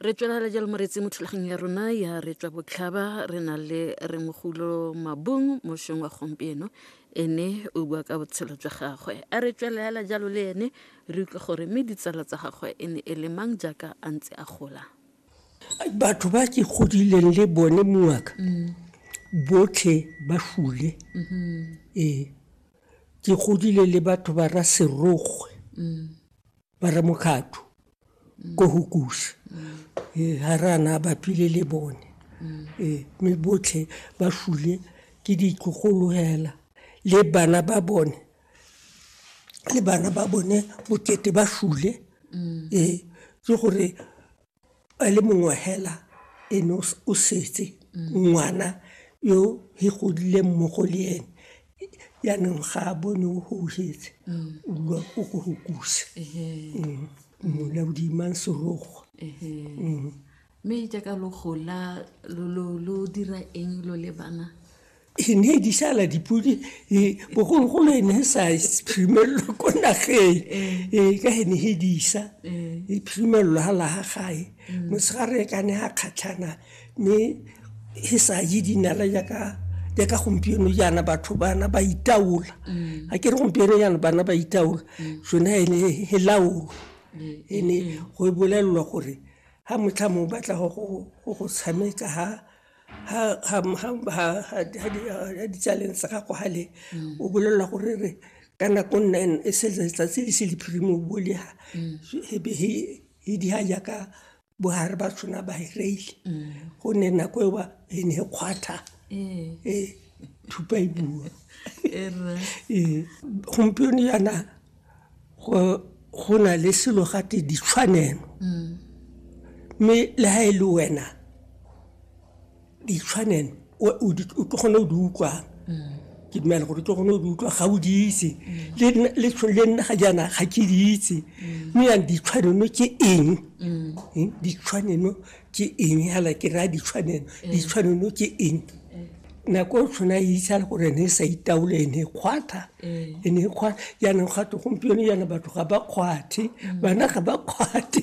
re tswelela jalo moretsi mo thulaganyong ya rona ya re tswa botlhaba re na le rengogolo mabung mošweng wa gompieno ene o bua ka botshelo jwa gagwe a re tswelela jalo le ene re utlwe gore mme ditsala tsa gagwe e ne e le mang jaaka a ntse a gola batho ba ke godileng le bone mongaka botlhe ba fule mm-hmm. ee ke godile le batho ba ra serogwe mm. ba re mokgatho ko go kusa ee ga re ana ba phile le bone ee mme botlhe ba fule ke ditlogologela le bana ba bone le bana ba bone bokete ba fule ee ke gore a le mongwe hela ene o setse ngwana yo he godileng mo go le ene yaanong ga a bone o houhetse o dula o ko go kusa mmone a bodimang serogo mme jaaka lo gola lo dira eng lo le bana e ne e disala dipodi e, bogologolo e ne e sa phimelelo ko nageng e, ka e ne e disa e phimelelo ga laga gae mm. mosegare ka ne a kgatlhana mme e sa je dinala jaaka jaaka gompieno jaana batho bana ba itaola mm. a ke re gompieno jaana bana ba itaola mm. sone e ne e laolo mm. e ne go e bolelelwa gore ga motlha mo batla go go tshameka ga ha di tsaleng sa gago ga le o bolelela gore re ka nako nna e se letsatsi le se lephirimo o bolega ebe he di ha jaaka bohare ba tshwana ba hireile gonne nako eo ba e ne e kgwatha e thupa e bua gompieno yana go na le selo gate ditshwanelo mm. mme le ga e le wena ditshwanelo o tlo kgone o di utlwang mm. ke dumela gore o tlo kgone o di utlwa ga o di itse mm. le nna ga jaana ga ke di itse mme yang ditshwanelo ke eng ditshwanelo ke eng hala ke raya ditshwanelo eh. ditshwanelo ke eng eh. nako o tshwana e itse le gore ne e sa itaole e ne e kgwatha eh. e ne e kgwatha jaanong gate gompieno jaana batho ga ba kgwathe mm. bana ga ba kgwathe